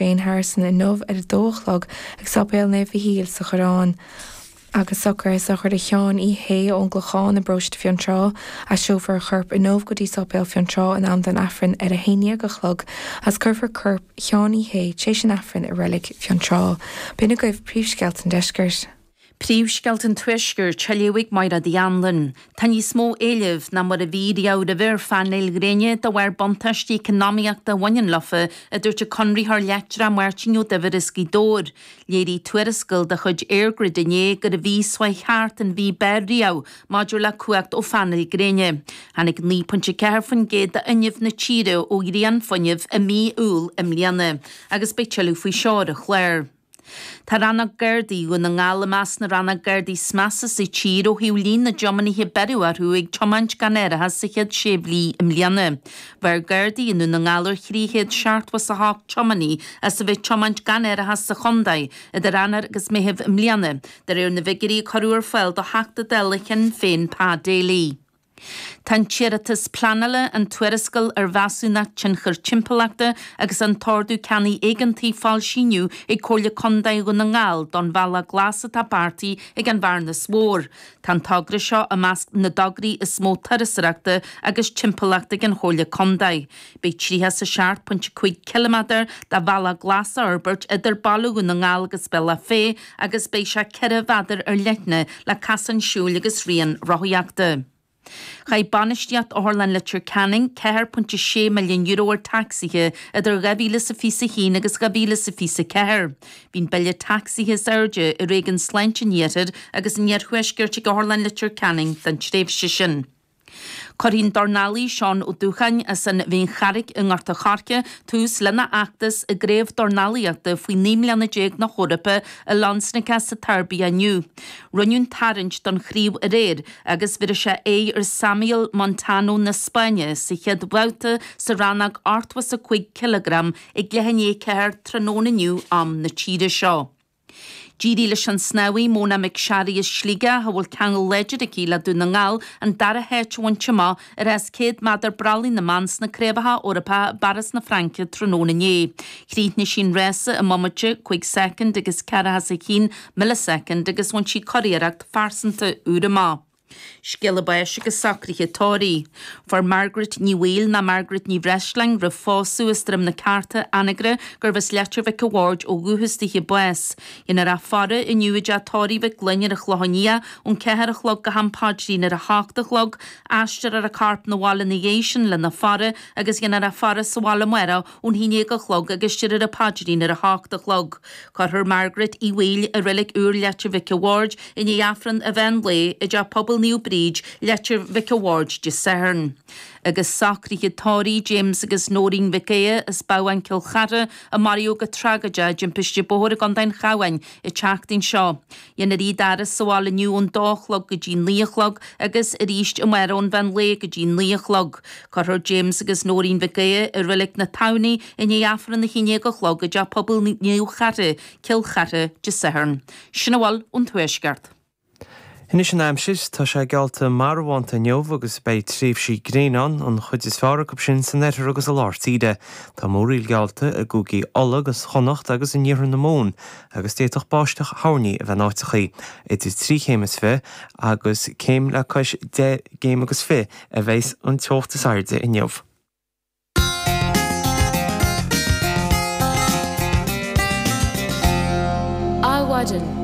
Shane Harrison inniu ar a dó a chlog ag Sáipéal Naomh Mhichíl sa Choireán. Agus socraithe sochraide Sheáin Uí Shé ón gClochán i bparóiste Fionntrá, aistreofar a chorp inniu go dtí Sáipéal Fionntrá in am don Aifreann ar a haon déag a chlog agus cuirfear corp Sheáin Uí Shé tréis an Aifrinn i reilig Fionntrá. B'in agaibh príomhscéalta an deiscirt. Príomhscéalta an Tuaiscirt á léamh ag Máire Ní Anluain Tá níos mó éilimh ná mar a bhí riamh roimhe ar phainéil ghréine de bharr buntáistí eacnamaíochta a bhaineann leofa, a dúirt an conraitheoir leictreach Máirtín Ó Duibhir as Gaoth Dobhair. Léirigh tuarascáil de chuid EirGrid inné gur an mhí seo chuaigh thart an mhí ab fhearr riamh maidir le cumhacht ó phainéil gréine. Tháinig 9.4% d'fhuinneamh na tíre ó ghrianfhuinneamh i mí Iúil i mbliana agus beidh tuilleadh faoi seo ar an chlár. Tá Rannóg Gardaí Dhún na nGall i measc na Rannóg Gardaí is measa sa tír ó thaobh líon na dtiománaithe a beireadh orthu ag tiomáint gan árachas sa chéad sé mhí i mbliana. Bheir Gardaí i nDún na nGall ar thrí chéad seachtó is a hocht tiománaí as a bheith tiomáint gan árachas sa chontae idir Eanáir agus Meitheamh i mbliana, de réir na bhfigiuirí a cuireadh ar fáil do Theachta Dála Shinn Féin Pa Daly. Tá an t-iarratas pleanála, an tuarascáil ar Mheasúnacht Tionchair Timpeallachta agus an tOrdú Ceannaigh Éigeantaigh foilsithe inniu ag Comhairle Condae Dhún na nGall don Bhealach Glas atá beartaithe ag an Bhearnas Mhór. Tá an togra seo i measc na dtograí is mó turasóireachta agus timpeallachta ag an Chomhairle Condae. Beidh 37.5 ciliméadar de bhealach glas á fhorbairt idir Baile Dhún na nGall agus Bealach Féich, agus beidh sé ceithre mhéadar ar leithne le casán siúil agus rian rothaíochta. Chaith bainistíocht Otharlann Leitir Ceanainn ceathair pointe a sé milliún euro ar tacsaithe idir dhá mhíle is a fiche is a haon agus dhá mhíle is a fiche is a ceathair. Bhí an bille tacsaithe is airde i réigiún Sláinte an Iarthair agus an Iarthuaiscirt ag Otharlann Leitir Ceanainn don tréimhse sin. Cuirfidh an dornálaí Seán Ó Dúcháin as an Mhín Dearg i nGort a' Choirce tús lena fheachtas i gcraobh dornálaíochta faoi naoi mbliana déag na hEorpa i Loznica sa tSeirbia inniu. Rinneadh an tarraingt don chraobh aréir agus bhéarfaidh sé aghaidh ar Samuel Montano na Spáinne sa chéad bhabhta sa rannóg ochtó is a cúig cileagram ag leath i ndiaidh a ceathair tráthnóna inniu am na tíre seo. D'éirigh leis an snámhaí Mona McSharry as Sligeach, a bhfuil ceangal láidir aici le Dún na nGall, an dara háit a bhaint amach i rás 100 méadar brollaigh na mban sna Craobhacha Eorpacha i bPáras na Fraince tráthnóna inné. Chríochnaigh sí an rása i mbomaite, 5 soicind agus 41 milleasoicind, agus bhain sí curiarracht phearsanta úr amach. Scéala báis agus socruithe tórraimh. Fuair Margaret Ní Bhaoill nó Margaret Ní Bhreisleáin roimh phósadh as Droim na Ceárta Anagaire gurbh as Leitir Mhic a' Bhaird ó dhúchas dithe bás. Déanfar a faire inniu i dteach tórraimh Mhic Fhloinn ar an Chlochán Liath ón ceathair a chlog go ham Páidrín ar a hocht a chlog, aistreofar an corp 'na bhaile 'na dhiaidh sin lena faire agus déanfar a faire sa bhaile amárach ón haon déag a chlog agus déarfar an paidrín ar a hocht a chlog. Cuirfear Margaret Uí Bhaoill i Reilig Úr Leitir Mhic an Bhaird i ndiaidh Aifreann an mheán lae i dTeach Pobail Naomh Bríd, Leitir Mhic an Bhaird Dé Sathairn. Agus socruithe tórraimh, James agus Nóirín Mhic Aodha as Bábhún Cill Charthaigh a maraíodh go tragóideach i dtimpiste bóthair i gContae an Chabháin an tseachtain seo. Déanfar iad a fhaire sa bhaile inniu ón dó a chlog go dtí naoi a chlog agus arís amárach ón mheán lae go dtí naoi a chlog. Cuirfear James agus Nóirín Mhic Aodha i Reilig na Tamhnaí i ndiaidh Aifreann a haon déag a chlog i dteach pobail Naomh Charthaigh, Cill Charthaigh Dé Sathairn. Sin a bhfuil ón Tuaisceart. Anois an aimsir. Tá sé geallta marbhánta inniu agus beidh tréimhsí gréine ann, an chuid is fearr acu sin san oirthear agus i lár tíre. Tá múraíl geallta i gcúigí Uladh agus Chonnacht agus in iarthar na Mumhan agus d'fhéadfadh báisteach thoirní a bheith in áiteachaí, idir trí chéim is fiche agus céim le cois deich gcéim agus fiche a bheas an teocht is airde inniu. Adhmhaidin.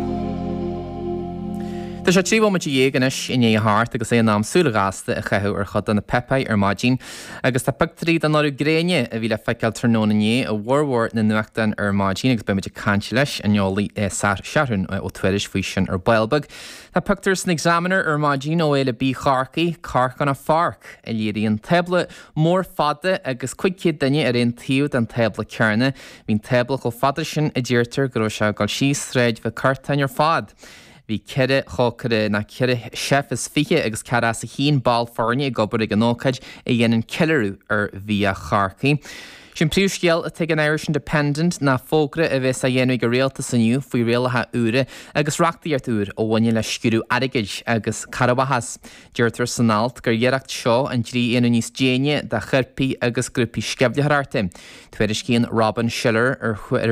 Tá sé trí bhomaite dhéag anois i ndiaidh a hocht agus é in am súil ghasta a chaitheamh ar chuid de na páipéir ar maidin. Agus tá pictiúirí den urú gréine a bhí le feiceáil tráthnóna inné i bhformhór na nuachtán ar maidin agus beimid ag caint leis an eolaí Seathrún Ó Tuairisg faoi sin ar ball beag. Tá pictiúr san Examiner ar maidin ó Fhéile Bia Chorcaí, Cork on a Fork! a léiríonn tábla mór fada agus cúig chéad duine ar aon taobh den tábla céanna. Bhí an tábla chomh fada sin a deirtear go raibh sé ag dul síos Sráid Mhic Curtáin ar fad! Bhí ceithre chócaire nó ceithre chef is fiche agus céad os a chionn ball foirne ag obair ag an ócáid a dhéanann ceiliúradh ar bhia Chorcaí. Is é an príomhscéal atá ag an Irish Independent ná fógra a bheas á dhéanamh ag an Rialtas inniu faoi rialacha úra agus reachtaíocht úr a bhaineann le sciúradh airgid agus cearrbhachas. Deirtear san alt gur iarracht seo an dlí a dhéanamh níos déine do choirpigh agus grúpaí sceimhlitheoireachta. Tuairiscíonn Robin Schiller ar